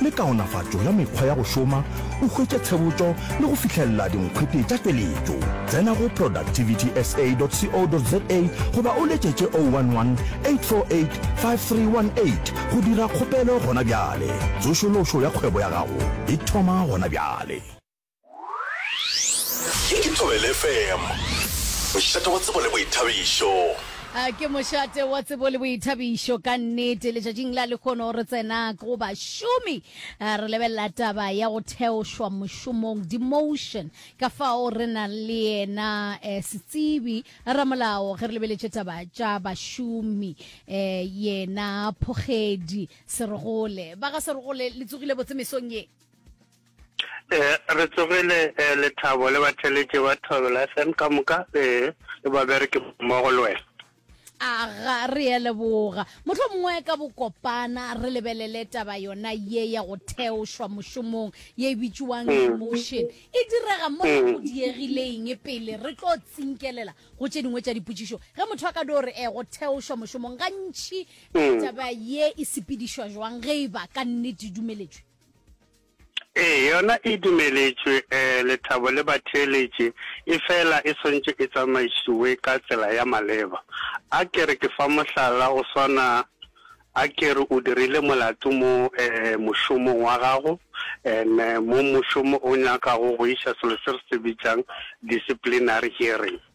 le kaonafatšo ya mekgwa ya go šoma, o hwetše tshebotšo le go fihlelela dinkgwete tša tšweletšo. Tsena go productivitysa.co.za goba o letšetše 011 848 5318 go dira kgopelo gona bjale. Tsošološo ya kgwebo ya gago e thoma gona bjale. Ye ke Thobela FM, mošate wa tsebo le boithabišo. A ke mošate wa tsebo le boithabišo ka nnete letšatšing la lekgono re tsena go bašomi a re lebelela taba ya go theošwa mošomong demotion ka fao re na le yena eh, setsebi ramolao ge re lebeletše taba tša bašomi eh, yena phogedi serogole ba ga serogole le tsogile botse mesong ye Eh, re tsogile eh, lethabo le batheletše ba thobela fm ka moka eh, le babereki mmogo le wena aga re ye leboga motlho mongwe ka bokopana re lebelele taba yona ye ya go theošwa mošomong ye e bitšewang mm. demotion e direga mo mm. go diegileng pele re tlo tsinkelela go tše dingwe tša dipotšišo ge motho a ka do re e eh, go theošwa mošomong gantšhi mm. taba ye e sepedišwa jwang ge e ba ka nnete dumeletšwe Ee, yona e dumeletšwe, ee, lethabo le batheeletši, efela e swanetše e tsamaišiwe ka tsela ya maleba. A ke re ke fa mohlala, go swana, a ke re o dirile molato mo, ee, mošomong wa gago, and mo mošomo o nyakago go iša selo se re se bitšang disciplinary hearing.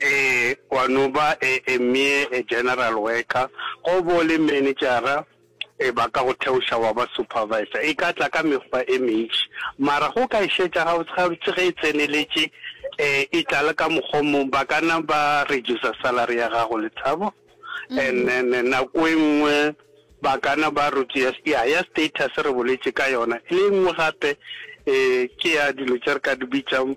Ee, gwa no ba e, e mmee e general worker, go bo le manejara, e ba ka go theoša wa ba supervisor. E ka tla ka mekgwa e mentši, mara go ka e šetša gabotsegabotse ge e tseneletše, e, e tla le ka mokgwa o mongwe. Ba ka na ba reducer salary ya gago, le thabo, and then nako e nngwe ba ka na ba reduce, ya, ya status re boletše ka yona, le e nngwe gape, e, ke ya dilo tše re ka di bitšang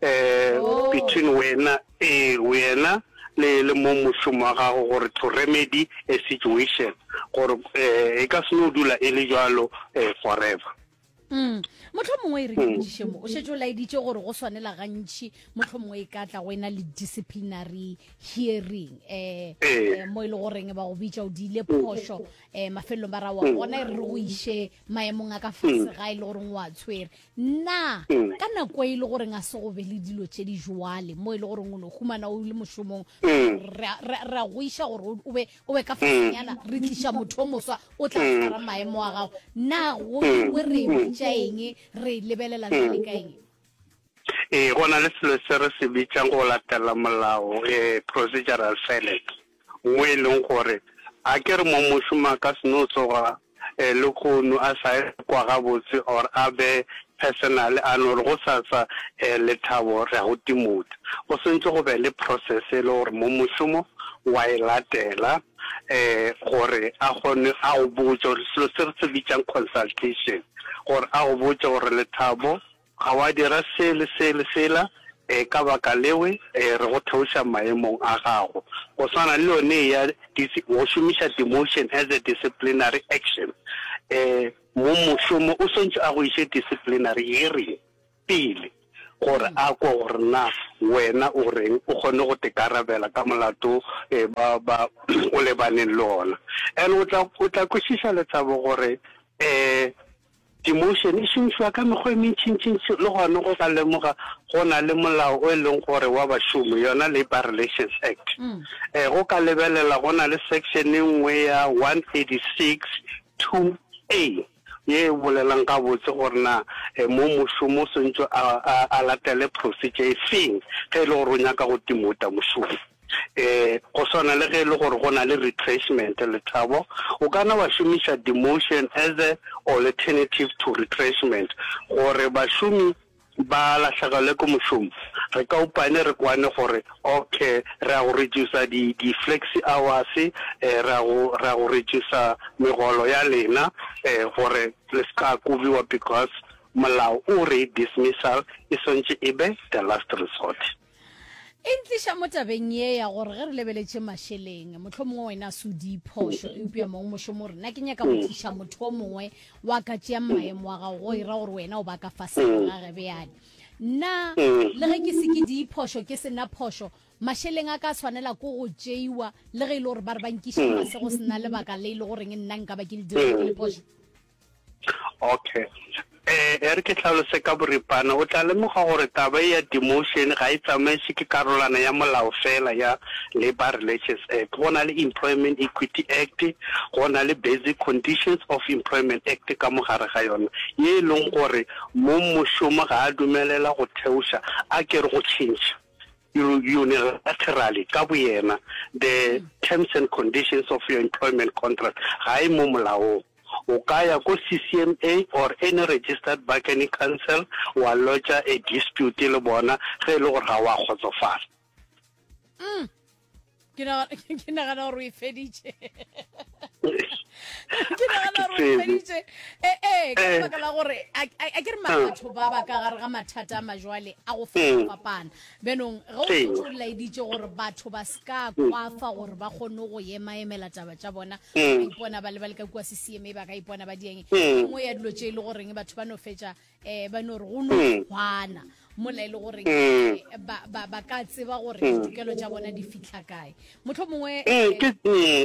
eh, oh. between wena eh, wena le le mo mošomo wa gago gore to remedy a situation gore eh, e ka se no dula e le jalo eh, forever Mm. motlho mongwe e re mm. kedišemo o šetse o laeditše gore go swanela gantšhi motlho mongwe e ka tla go ena le disciplinary hearing um um mo e le goreng ba go bitša o diile mm. phošo um mafelelong ba ra wa gona e re re go iše maemong a ka fase ga e le goreng o a tshwere Na ka nako e le goreng a se go be le dilo tše di joale mo e le goreng o no humana o le mošomong ra ra- ra go iša gore o- o be o be ka fasenyana re tliša motho o moswa o tla swara maemo a gago na go we re bitša eng re lebelela jale ka eng Ee, go na le selo se re se bitšang go latela molao, eh, procedural silence. mo e leng gore a ke re mo mošomo a ka se no tsoga eh, le kgono a sa e kwa gabotse or a be personal a no re go sasa eh, lethabo re a go timotsa go sentse go be le process e le gore mo mošomo wa e latela eh, gore a kgone a go botse gore selo se re se bitsang consultation gore a go botse gore lethabo Ga wa dira se le se le sela, ee, ka baka lewe, ee, re go theoša maemong a gago. Go swana le yone eya dis, go šomiša demotion as a disciplinary action. Ee, mong mošomo o swantšwe a go iše disciplinary hearing pele, gore a kwe gore na wena o reng, o kgone go tekarabela ka molato ee, ba, ba o lebaneng le ona. And o tla, o tla kwešiša Lethabo gore ee, Demotion e šomišwa ka mekgwa e mentšintšintši le gona go ka lemoga go na le molao o e leng gore wa bašomi, yona Labour Relations Act. E go ka lebelela go na le section e nngwe ya 136 2A ye e bolelang gabotse gore na mong mošomi o swantšwe a latele procedure e feng ge e le gore o nyaka go demoter mošomi. Eh, go swana le ge e le gore go na le retrenchment, Lethabo, o ka na wa šomiša demotion as a alternative to retrenchment, gore bašomi ba lahlegelwe ke mošomo, re ka upane re kwane gore okay re a go reducer di di flexi hours, eh, re a go re a go reducer megolo ya lena, eh, gore le se ka kobiwa because molao o re dismissal e swantše e be the last resort. E ntliša mo tabeng ye ya gore ge re lebeletše mašeleng, mohlho mongwe wena a se o di phošo, eupša mongwe mošomo re, na ke nyaka go tliša motho o mongwe wa ka tšeang maemo a gago, go e ra gore wena o ba ka fasego ga ge bjale. Na le ge ke se ke di phošo, ke se na phošo, mašeleng a ka a swanela ko go tšeiwa le ge e le gore ba re ba nkiša fase go se na lebaka le e le goreng nna nka ba ke le dirile ke le phošo? Okay. Eh, e re ke hlalose ka boripana, o tla lemoga gore taba e ya demotion ga e tsamaiswe ke karolwana ya molao fela ya Labour Relations Act. Go na le Employment Equity Act, go na le Basic Conditions of Employment Act ka mo gare ga yona, ye e leng gore mong mošomo ga a dumelela go theoša a kere go tšhentšha unilaterally ka boyena the terms and conditions of your employment contract ga e mo molaong. O ka ya ko CCMA or any registered bargaining council wa lodger a dispute le bona ge e le gore ga wa kgotsofala. Mm. Ke nagana ke nagana gore o e feditše. Ke nagana gore o e feditše. E e ka eh. baka la gore a ke re batho ba ba ka gare ga mathata a majwale a go fapana. Beenong, ge o šetše o laeditše gore batho ba se ka kwafa gore ba kgonne go emaemela taba tša bona, ba ka ipona ba le ba le ka kua CCMA, ba ka ipona ba di eng, e nngwe ya dilo tše e le goreng batho ba no fetša um ba no re go no kgwana mola e le goreng ba, ba, ba, ba ka tseba gore ditokelo tša bona di fihla kae. Mohlomongwe. Ee, ke,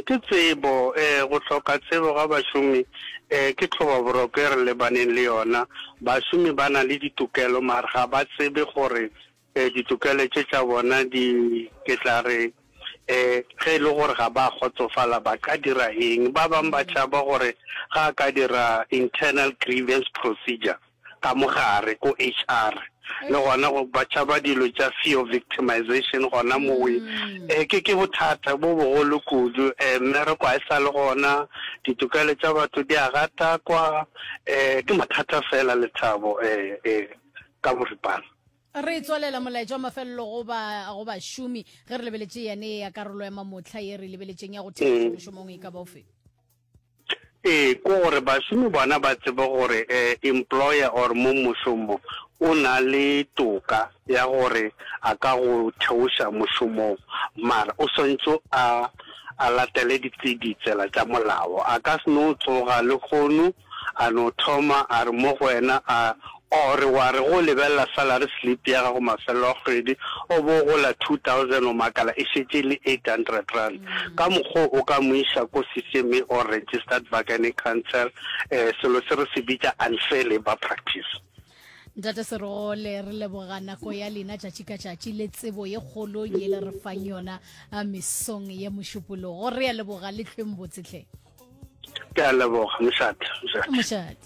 ke tsebo. Ee, go hloka tsebo ga bašomi ee, ke tlhobaboroko e re lebaneng le yona. Bašomi ba na le ditokelo, mare ga ba tsebe gore ee, ditokelo tše tša bona di, ke tla re, ee, ge e le gore ga ba kgotsofala ba ka dira eng. Ba bang ba tšhaba gore ga a ka dira internal grievance procedure. ka mo gare ko HR le gona go ba tšhaba dilo tša fear of victimization gona mowe eh, ke ke bothata bo bogolo kudu eh, mmereko ga e sa le gona ditokelo tša batho di a gatakwa eh, ke mathata fela lethabo eh, eh, ka boripana re tswalela molaetša wa mafelelo go ba go bašomi ge re lebeletše yane ya karolo ya mamotlha ye re lebeletšeng ya go thea mm. mošomong e ka baofe Ee, ke gore bašomi bona ba tsebe gore eh, employer or mo mošomo o na le toka ya gore a ka go theoša mošomong, mara o swantšo a a latele ditse ditsela tša molao. A ka se no tsoga le kgono a no thoma a re mo go wena a Or wa re ge o lebelela salary slip ya gago mafelelo a kgwedi o bo o gola 2000 o makala e šetše e le 800 rand. Ka mokgo o ka mo iša ko CCMA or Registered Bargaining Council, eh, selo se re se bitša unfair labour practice. Ntate Serogole re leboga nako ya lena tšatši ka tšatši le tsebo ye kgolo ye le re fang yona a mesong ye mošupologo. Re a leboga le hlweng botse hle. Ke a leboga, mošate, mošate. Mošate.